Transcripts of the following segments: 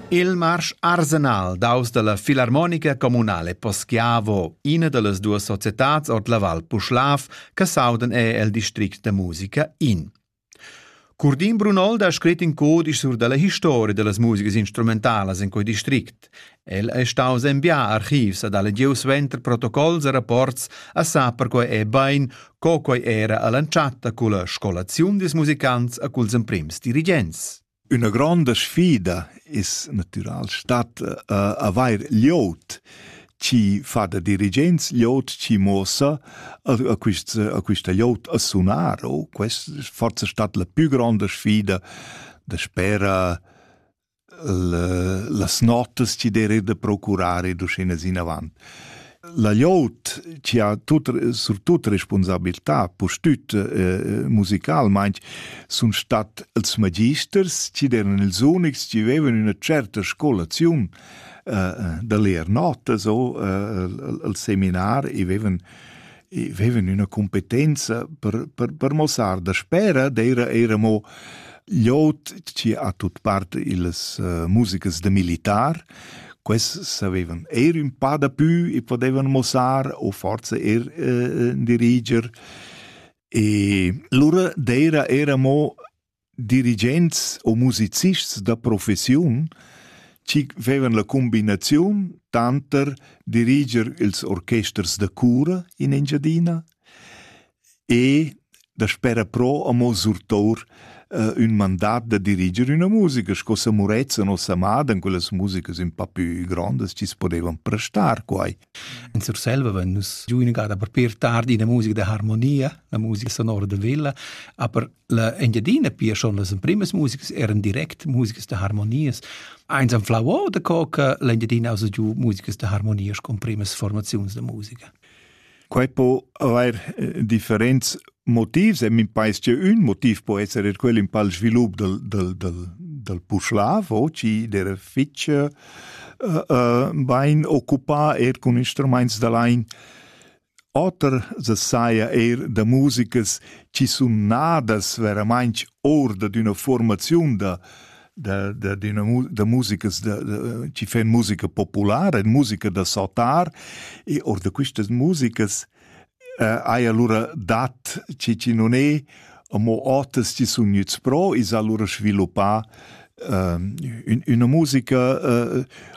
Il marsch arsenal daus dalla filarmonica communale Poschiavo, ina dallas duas societads ord la Val Puschlav, che sauden è el district da musica in. Curdin Brunolda ha scrit in codisch sur dalla historia dallas musigas instrumentalas in quei district. El ei staus enviar archivs ed ha lediu suenter protocols e rapports a sa per quei ei bein, co quei era all'entschatta culla scolaziun dils musicants e culs emprims dirigents. Üna gronda sfida es natüral stat uh, avair liot chi fa da dirigents liot chi mossa a, a, quist, a quista liot a sunar o quest forse stat la più gronda sfida da spera las notas chi der da procurar ed uschinas inavant. La glieud chi ha tut, surtut responsabilità, pustüt eh, musicalmaing, sun stat els magisters chi eran ils unics chi avevan üna certa scolaziun eh, da leer notas o eh, al seminar e avevan e vevan üna cumpetenza per, per, per mossar daspera d'eira eira mo gl'ot chi ha tut part illas uh, musicas da militar. Quest savevan eir ün pa dapü e podevan mossar o forza eir uh, diriger. E lura d'eira era mo Dirigents u musicists da professiun chi vevan la cumbinaziun tanter diriger ils orchesters da cura in Engiadina e daspera però amo surtour ün mandat da diriger üna musica sco sa Murezza nos amada, quelle musicas ün pa pü grondas chi's podevan prestar quai. In Surselva vein nus giu inagada per pir tard ina musica da harmonia, la musica sonora da Villa, aber la Engiadina pia schon las emprimas musikas eran direct musikas da harmonias. Eins am flau o da co che l'Engiadina ha giu musikas da harmonia con primas formaziuns da musica. Quei po haver eh, differenz motivs e min pais che ün motiv po esser er quel in pal svilup del del del del Puschlav o chi der fich uh, uh, bain occupà er cun instruments da lain oter se saja er da musicas chi sun nadas veramainch or da d'una formaziun da da da d'una mu da musicas da, da chi fan musica populara, musica da sautar e or da quistas musicas hai alura dat chi chi nun es, amo oters chi sun gnüts pro, i's ha alura sviluppà üna musica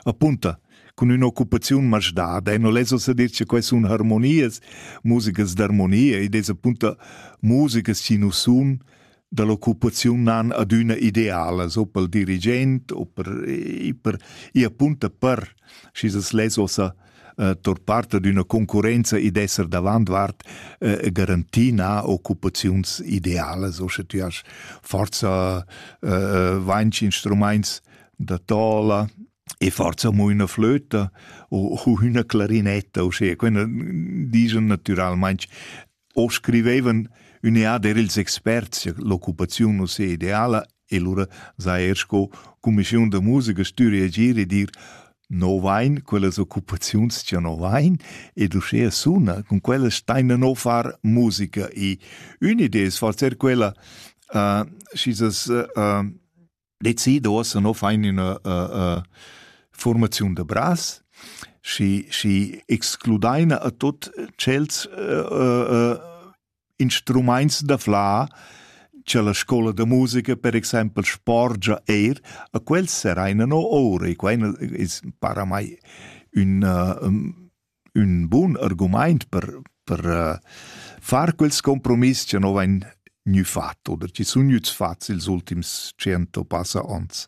apunta cun ün'occupaziun masdada e non less uossa dir che que sun harmonias, musicas d'armonia, id es apunta musicas chi nu sun da l'occupaziun nan adüna idealas, o pel dirigent o per, e per, e appunto per, schi s'es less ossa eh, tor parte d'una concurenza ed esser davantvart eh, garantina occupaziuns idealas, o sche tu has forza eh, vainch instrumaints da tola, e forza mo üna flöta o, o üna clarinetta, uschea, quella dischan natüralmaing O scrivevan ün'ead er ils experts cha l'occupaziun nu sia ideala e lura s'ha eir sco cumischiun da musica stüri agir e dir no vain quellas occupaziuns cha no vain ed uschea suna, cun quellas staina no far musica. E ün'idea es forse er quella, uh, schi s'as uh, decido ossa no fain üna uh, uh, formaziun da bras și, și excludaina a tot cels uh, uh, instruments da fla che la scola da musica per exempel sporgia eir a quels seraina no ore quaina para mai un uh, ün bun argumaint per per far quels compromiss cha no vain gnü fat oder chi sun gnüts fats ils ultims tschient o passa ons.